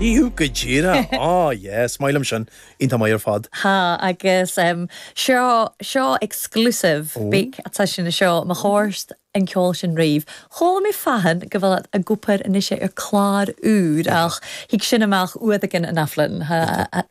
Iú go díreach! Á, yes, is maith liom sin. Iontach maith ar fad. ha agus em seo seo exclusive beag atá sin seo mo chomhairst an ceol sin raobh chuala mé fathann go bhfuil ag obair anois ar clár úr ach thig sin amach uair éigin an athbhliain ha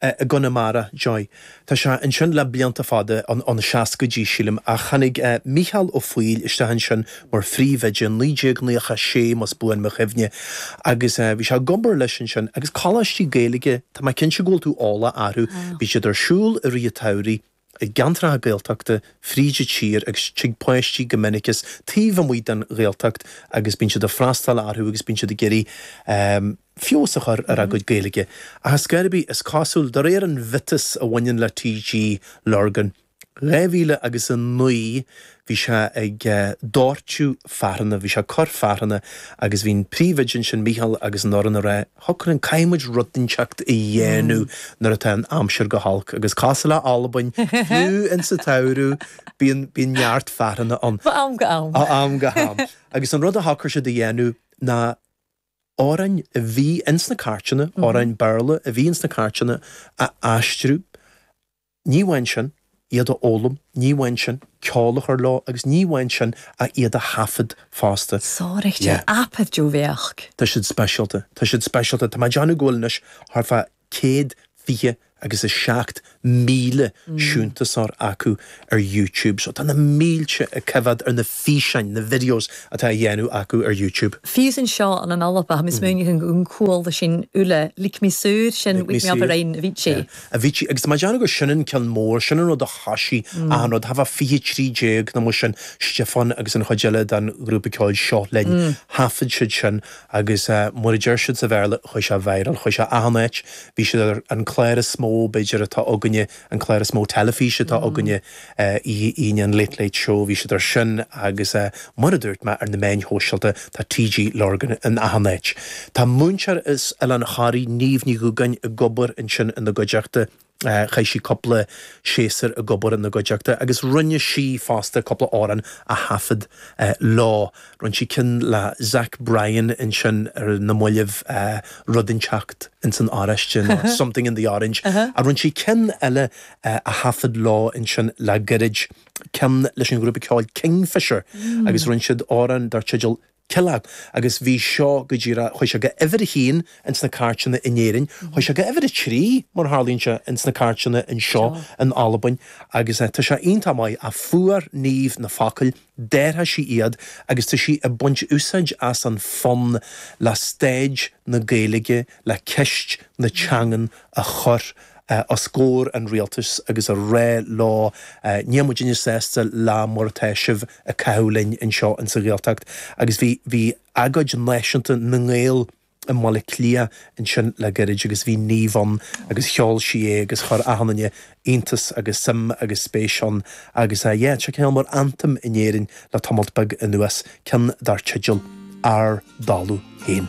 i gConamara, Joy. Tá sé ansin le blianta fada, ó na seascaidí, sílim, ach tháinig Mícheál Ó Foighil isteach ansin mar phríomhoide in 1996, más buan mo chuimhne, agus bhí sé ag obair leis ansin. Agus coláistí Gaeilge, tá mé cinnte go bhfuil tú eolach orthu, bíonn siad ar siúl i rith an tsamhraidh. i gceantracha Gaeltachta fríd an tír agus tig páistí go minic as taobh amuigh den Ghaeltacht agus bíonn siad ag freastal orthu agus bíonn siad ag iarraidh feabhas a chur ar a gcuid Gaeilge. Ach ar scor ar bith, is cosúil, de réir an mhiotais a bhaineann le TG Lurgan, 2009, Bhí sé ag dóirteadh fearthanna, bhí sé ag cur fearthanna agus bhí an príomhoide ansin, Mícheál, agus an fhoireann ag rá, Shocraigh, caithfidh muid rud inteacht a dhéanamh nuair atá an aimsir go holc. Agus cosúil le Albain, fiú in sa tsamhradh, bíonn, bíonn neart fearthanna ann. Ó am go ham. Ó am go ham. Agus an rud a shocraigh siad a dhéanamh ná amhráin a bhí in sna cairteanna, amhráin Béarla a bhí in sna cairteanna a aistriú. Ní amháin sin, iad a fhoghlaim, ní amháin sin, ceol a chur leo agus ní amháin sin ach iad a thaifead fosta. Sáraíocht ar aipeanna diúmhaireachta. Tá siad speisialta, tá siad speisialta. Tá mé ag déanamh go bhfuil anois thart fá céad fiche agus a seacht míle síntiúsóir acu ar YouTube. So tá na mílte ag coimheád ar na físeáin, na videos atá á dhéanamh acu ar YouTube. Fiú san seo an an Alba, tá mé ag smaoineamh an chuala sinn uile, Lig mé saor sin, Wake me up a rinn Avicii. Avicii, agus tá mé ag déanamh gur sin an ceann mór, sin an rud a thosaigh achan rud, thart fá 2013 nó mar sin, Stiofán agus an chuid eile den ghrúpa ceoil Seo Linn, thaifead siad sin agus mar a deir siad sa Bhéarla, chuaigh sé viral, chuaigh sé achan áit, bhí siad ar an clár is mó b'fhéidir atá againne, an clár is mó teilifíse atá againne. Aoine an Late Late Show, bhí siad ar sin agus mar a dúirt mé ar na meáin shóisialta tá TG Lurgan in achan áit. Tá múinteoir as Oileán Thoraí, Niamh Ní Dhubhgáin ag obair ansin ina gcuideachta, chaith sí cúpla séasúr ag obair ina gcuideachta agus rinne sí fosta cúpla amhrán a thaifead leo, rinne sí ceann le Zach Bryan ansin ar na mallaibh, Rud Inteacht ins an Oráiste nó Something in the Orange, rinne sí ceann eile a thaifead leo ansin le gairid, ceann leis an ghrúpa ceoil Kingfishr agus rinne siad amhrán dar teideal 'Killeagh' agus bhí seo go díreach, chuaigh sé go uimhir a haon ins na cairteanna in Éirinn, chuaigh sé go uimhir a trí, mar a tharlaíonn sé, ins na cairteanna anseo in Albain agus tá sé iontach maith a fuair Niamh na focail Déarfadh sí iad agus tá sí ag baint úsáid as an fonn le stáid na Gaeilge, le ceist na teangan a chur os gcomhair an Rialtais agus a rá leo níl muidinne sásta le mar atá sibh ag caitheamh linn anseo insa Ghaeltacht agus bhí bhí agóid náisiúnta na nGael i mBaile Cliath ansin le gairid agus bhí Niamh ann agus cheol sí é agus chuir achan duine iontas agus suim agus spéis ann agus eh yeah tá sé cineál mar anthem in Éirinn le tamalt beag anuas, ceann dar teideal Ár dTalamh Féin.